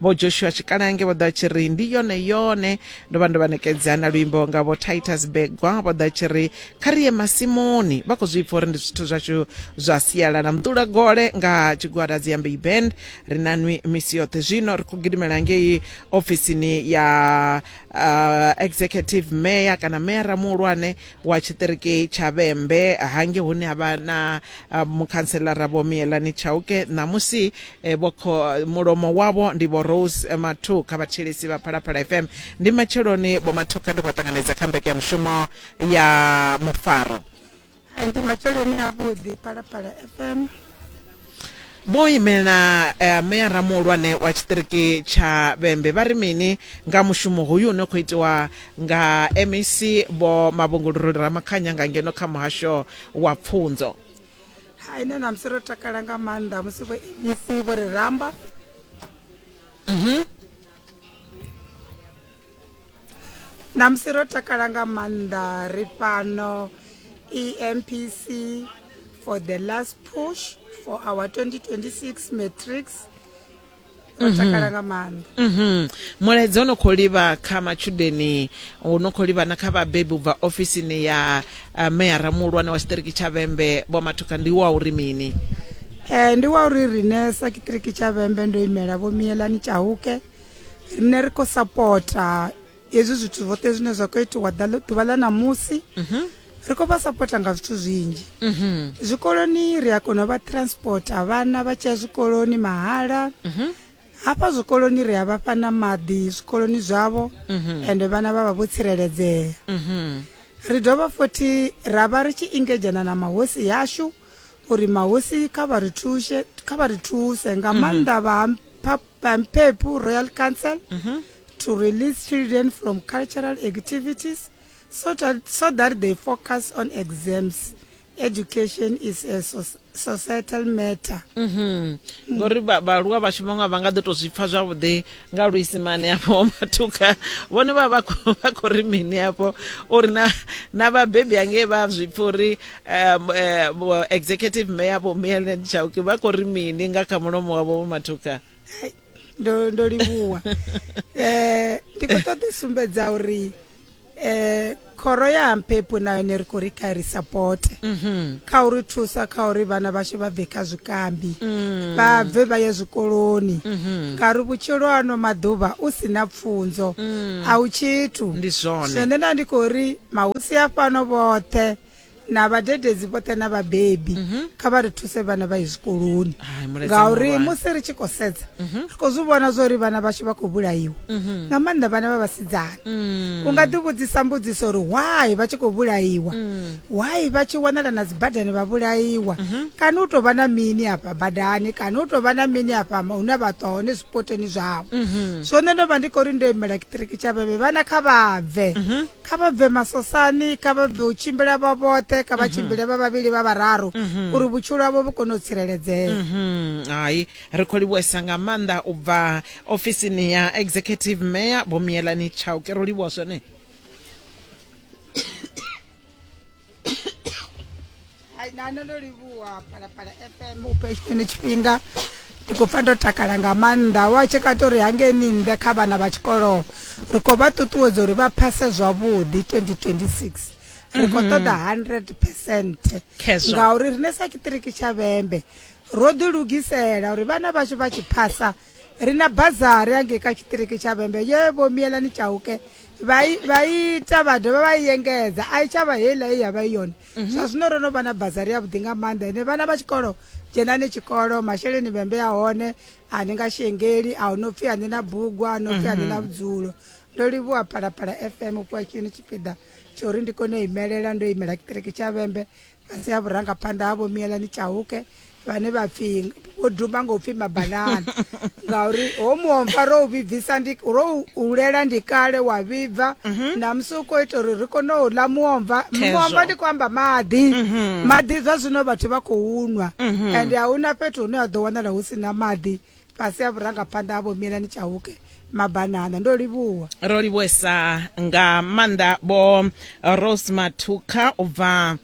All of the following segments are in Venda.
vho joshua tshikalange vho ḓa tshi ri ndi yone yone ndo vha ndo vha nekedza na luimbo nga vho titus begwa vho ḓa tshi ri kha ri ye masimuni vha khou zwi pfa uri ndi zwithu zwashu zwa sialala mdula gole nga tshigwada dziambei band ri na nwi misi yoṱhe zwino ri khou gidimela ngei ofisini ya uh, executive mayor kana meyara muhulwane wa tshiṱiriki tsha vhembe hange hune ha vha na ah, mukhanselara vho miyelani tshauke ṋamusi eh, vho kho- mulomo wavho ndi vho rose eh, mathu kha vhathetshelesi vha phalaphala fm ndi matsheloni vho mathu kha ndi khou ṱanganedza kha mbekanyamushumo ya mufaro ndi matsheloni avhuḓi phalaphala fm Vho imela eh, meyara muhulwane wa tshiṱiriki tsha Vhembe vha ri mini nga mushumo hoyu une khou itiwa nga MEC vho Mavhunguluruli Ramakhanya nga ngeno kha muhasho wa pfunzo. hai nṋe namusi ro takala nga maanḓa musi vho mec vho ri ramba ṋamusi ro takala nga maanḓa ri fhano empc for the last push for our 2026 matrix ro mhm. takala nga maanḓa mhm. mulaedza ono khou livha kha matshudeni uno khou livha na kha vhabebi u bva ofisini ya eh, meyara muhulwane wa tshiṱiriki tsha vhembe vho mathuka ndi wa uri mini um ndi wa uri rine sa kiṱiriki tsha vhembe ndo imela vho miyelani tshahuke rine ri khou sapota hezwi zwithu zwoṱhe zwine zwa khou itiwa ḓuvha ḽa ṋamusi mhm. ri khou vha sapota nga zwithu zwinzhi mhm. zwikoloni ri a kona u vha transporta vhana vha tshi ya zwikoloni mahala mhm. hafha zwikoloni ri a vha fha na maḓi zwikoloni zwavho ende vhana vha vha vho tsireledzea ri dovha futhi ra vha ri tshi ingedzhana na mahosi yashu uri mahosi kha vha ri thuse kha vha ri thuse nga maanḓa vha I'm Pepu, Royal Council, mm -hmm. to release children from cultural activities so that, so that they focus on exams. Education is a so societal matter. Mm -hmm. mm. Ngori vhaaluwa vhashu vhaṅwe vha nga ḓi tou zwi pfha zwavhuḓi nga luisimane afho matuka vhone vha vha khou ri mini afho uri na na vhabebi angei vha zwi pfha uri um, eh, vho executive mayor vho Mielen Chauke vha khou ri mini nga kha mulomo wavho vho Mathuka Hai, ndo ndo livhuwa eh ndi khou ṱoḓa u sumbedza uri eh khoro ya mphepo na yone ri khou ri kha ri sapote kha uri thusa kha uri vhana vhashu vha bve kha zwikambi vha bve vha ye zwikoloni ngauri vhutshilo ano maḓuvha u si na pfunzo a u tshithu Ndi zwone. zwine nda ndi khou ri mahosi a fhano vhoṱhe na vhadededzi vhoṱhe na vhabebi mhm. kha vha ri thuse vhana vha ye zwikoloni ngauri musi ri tshi khou sedza mhm. ri khou zwi vhona zwa uri vhana vhashu vha khou vhulaiwa mhm. nga maanḓa vhana vha vhasidzana mm. u nga ḓi vhudzisa mbudziso uri why vha tshi khou vhulaiwa mm. why vha tshi wanala na dzibadani vha vhulaiwa kana u tou vha na mini hafha badani kana u tou vha na mini hafha hune vha ṱwa hone zwipoteni zwavho so nṋe ndo vha ndi khou ri ndo imela kiṱiriki tsha vheve vhana kha vha bve kha vha bve masosani kha vha bve u tshimbila vha vhoṱhe kha vha mhm. tshimbile vha vhavhili vha vhararu mhm. uri vhutshilo havho vhu kone u tsireledzea mhm. hai ri khou livhuesa nga maanḓa u bva ofisini ya executive mayor vho miyelani tshau ke ro livhuwa zwone Hai, na nṋe ndo livhuwa phalaphala fm u phe tshine tshifhinga ndi khou pfa ndo takala nga maanḓa wa tshekata uri hangeni nnḓe kha vhana vha tshikolo ri khou vha ṱuṱuwedza uri vha phase zwavhuḓi 2026 ri khou ṱoḓa 100 percent Khezwo. ngauri rine sa tshiṱiriki tsha vhembe ro ḓilugisela uri vhana vhashu vha tshi phasa ri na bazari yangei kha tshiṱiriki tsha vhembe ye vho mielani tshauke vha ita vha dovha vha i engedza a i tshavha heiḽa ye ya vha i yone mhm. zwa zwino ro no vha na bazari ya vhuḓi nga maanḓa ine vhana vha tshikolo dzhenani tshikolo masheleni vhembe ya hone a ni nga shengeli a hu no pfhi a ni na bugu a no pfhi a ni na mhm. vhudzulo ndo livhuwa phalaphala fm u fhiwa tshini tshipiḓa tsho uri ndi kone u imelela ndo imela tshiṱiriki tsha vhembe fhasi ha vhurangaphanḓa ha vho miyelani tshauke vhane vha pfi vho dumba ngo pfi mabanana ngauri ho muomva ro u vhibvisa ndi ro hulela ndi kale wa vhibva mhm. na musi u khou ita uri ri kone u ḽa muomva muomva ndi khou amba maḓi mhm. maḓi zwa zwino vhathu vha khou nwa mhm. ende a huna fhethu hune ha ḓo wanala hu si na maḓi Fhasi ha vhurangaphanḓa ha Vho Mielani Chauke Mabanana. Ndo livhuwa. Ro livhuwesa nga maanḓa Vho Rose Mathukha u bva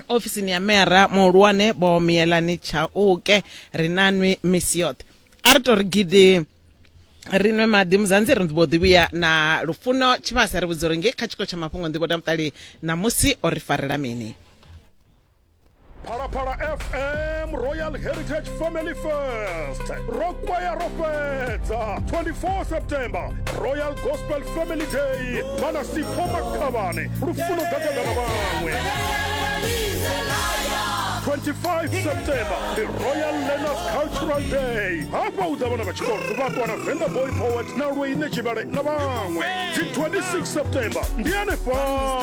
ofisini ya mera muhulwane Vho Mielani Chauke. Ri na nwi misi yoṱhe. A ri tou ri gidi ri nwe maḓi muzanzi ri mbo ḓi vhuya na lufuno tshivhasa ri vhudza uri ngei kha tshiko tsha mafhungo nḓivho tamutali ṋamusi o ri farela mini phalaphala fm royal heritage family fest ro kwaya ro fhedza 24 september royal gospel family day vhana sipho makhavhane lufuno gagagana vhaṅwe 25 september ndi royal learners cultural day hafha u ḓa vhana vha tshikolo vha ṱwa na venda boy poet na lweine tshivhale na vhaṅwe dzi 26 september ndi anefhala